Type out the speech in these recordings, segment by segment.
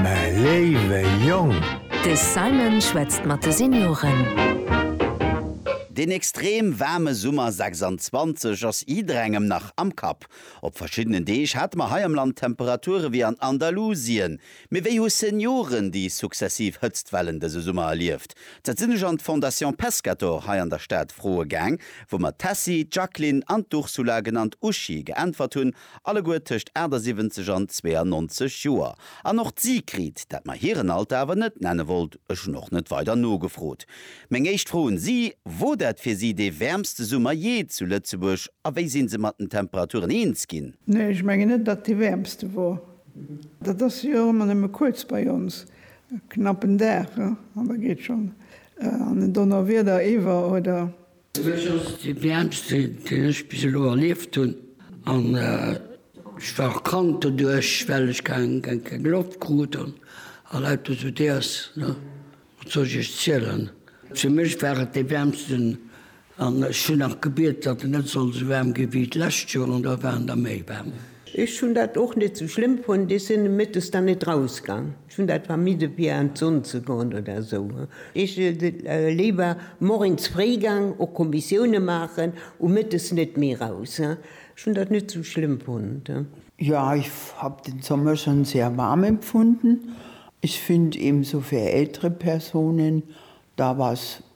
mä léiwe Jong! De Simon schwätzt mat de Senioren. Deen extrem waarme Summer 26 ass jidderengem nach am Kapp. Op verschiddenen Deeg hate mer hei am Land Temperature wéi an Andalusien. Mee wéi hu Senioren déi successiv Hëtztwellen dëse Summer erlieft? Dat sinn ech an d'Fondation Pescator hei an der Stad froe gaang, wou mer d'Tessy, d'Jacqueline an d'Ursula, genannt Uschi, geäntwert hunn Alleguer tëscht 78 an 92 Joer. An och d'Sigrid, dat mer hiren Alter awer net nenne wollt, ech hunn och net weider nogefrot. Meng éischt Fro un si, Wor dat fir si dee wäermste Summer jee zu Lëtzebuerg a wéi sinn se mat den Temperaturen eens ginn? Nee, ech mengen net, datt dee wäermste wor. Dat ass jo och ëmmer nëmme kuerz bei ons, e knappen Dag, an da geet schonn an en Donnerwieder iwwer oder Fir mech ass et déi wäermste, déi ech bis elo erlieft hunn. An ech war och krank doduerch, well ech keng Loft krut an lauter esou Déiers. Wat soll ech iech zielen? Fir mech war et dee wäermsten an ech hunn nach gebiet, datt et net soll esou waarm gi wéi d'lescht Joer. An da war en da méi waarm. Ech hunn dat och net esou schlëmm fonnt. Ech sinn nomëttes dann net rausgaang. Ech hun dat vermidde fir an d'Sonn ze goen oder esou. Ech wier léiwer morgens fréi gang och Kommissiounen maachen u Mëttes net méi raus. Ech hun dat net sou schlëmm fonnt. Ja, ich hab den Sommer schon sehr warm empfunden. Ich find ebenso für ältere Personen da was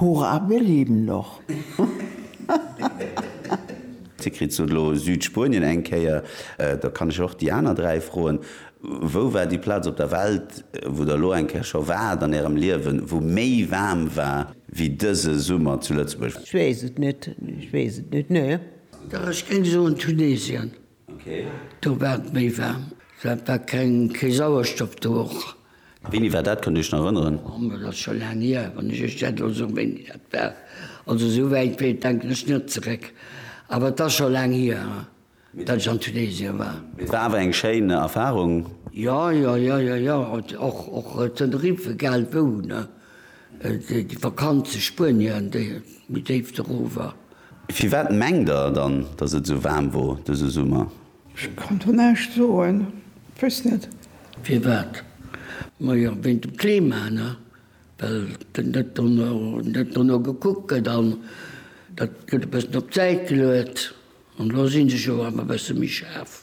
Hurra wir leben noch! Dir kritt sot elo Südspuenien eng Kéier, da kann ech och déi aner dräi froen, Wou war déi Plaz op der Welt, wou der elo eng Kéier scho waart an ärem Liewen, wou méi waarm war wéi dëse Summer zu Lëtzebuerg? Ech weess et net, ech weess et net, nee. Dach, ech géing soen Tunesien. Do war et méi waarm. Dat war keng, kee Sauerstoff do och. A wéini war dat? Kënnt Dir Iech nach erënneren? Oh, mä dat ass scho laang hier, wann ech Iech dat elo soen, wéini dat war. Also esou wäit wéi, denken ech net zeréck. Awer et ass scho laang hier, datt ech an Tunesien war. Mee et war awer eng schéin Erfarung? Jo, jo, jo, jo, jo. Och, och Tenerife, egal wou, ne? Déi Vakanz zu Spuenien, déi méi déif dorofwer. Firwat mengt der dann, dass et esou waarm wor dëse Summer? Ech kann do näischt soen, ech wéss net. Firwat? Majo, wéint dem Klima, ne? Well net dono, net dono gekuckt gëtt an dat gëtt e bëssen op d'Säit geluet an elo si se jo awer e bësse méi schaarf.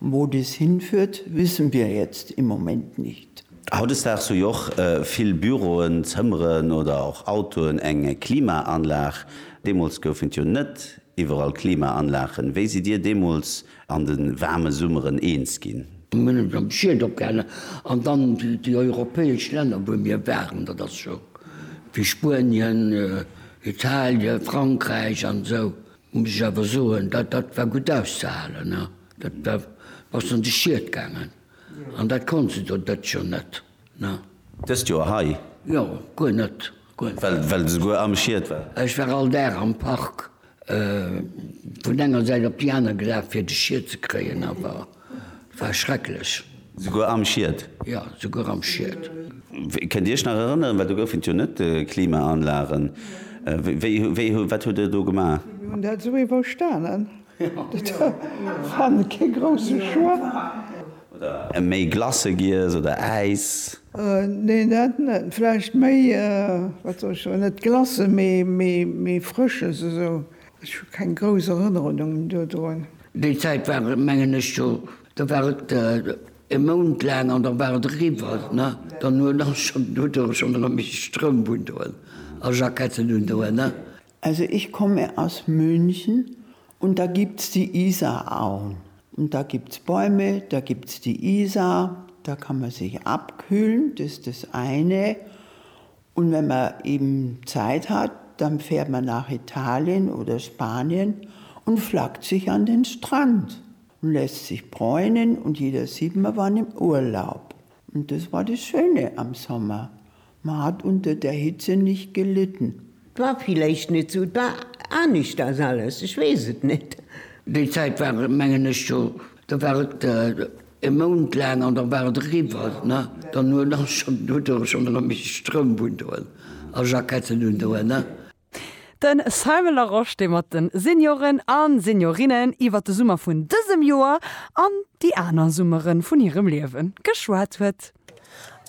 Wo dies hinführt, wissen wir jetzt im Moment nicht. Hautdesdaags hu jo och vill Büroen, Zëmmeren oder och Autoen eng Klimaanlag. Deemools goufen et jo net iwwerall Klimaanlagen. Wéi sidd Dir deemools an de waarme Summeren eens ginn? Mir hunn eis am Schied opgehalen an dann déi europäesch Länner, wou mir waren, dat ass scho wéi Spuenien, Italien, Frankräich an esou. Muss ech awer soen, dat dat war gutt auszehalen. Da bass de an de Schiet gaangen. An dat konnt se do dëst Joer net. Dëst Joer hei? Jo, guer net. Well de souguer am Schiet war? Ech war all Dag am Park vun enger Säit op déi aner gelaf, fir de Schiet ze kréien. Awer War schrecklech. Souguer am Schiet? Jo, souguer am Schiet. Kënnt Dir Iech nach erënneren, well do goufen et jo net Klimaanlagen, wéi, wéi, wat hutt Der do gemaach? Mir hunn dat esou iwwerstanen. Dat war kee grousse Choix. Oder méi Glace giess oder Äis? Nee, dat net. Vläicht méi, wat soll ech soen, net Glace, mee, mee, mee Frësches esou. Ech hu keng grouss Erënnerungen dodrun. Déi Zäit war et, mengen ech, scho, da war et e Mount laang an da war et eriwwer. Ne? Dann hu ech scho, huet Der scho erëm méi Stroum undoen a Jacketten undoen. Ne? Also ich komme aus München und da gibt es die Isarauen und da gibt es Bäume, da gibt es die Isar, da kann man sich abkühlen, das ist das eine. Un wenn mer eben Zeit hat dann fährt mer nach Italien oder Spanien und flackt sich an den Strand und lässt sich bräunen und jeder sieht mer waren im Urlaub und das war das Schöne am Sommer, mer hat unter der Hitze nicht gelitten. War villeicht net sou, war aneschters alles, ech wees et net. Déi Zeit war mengen ech scho Da war et e Mount laang an da war et eriwwer. Ne? Dann huet ass schonn dodurch schonn erëm méi Stroum vun doen a Jacketten un doen. Ne? De Simon Larosche, dee mat de Senioren a Seniorinnen iwwer de Summer vun dësem Joer an déi aner Summere vun hirem Liewe geschwat huet.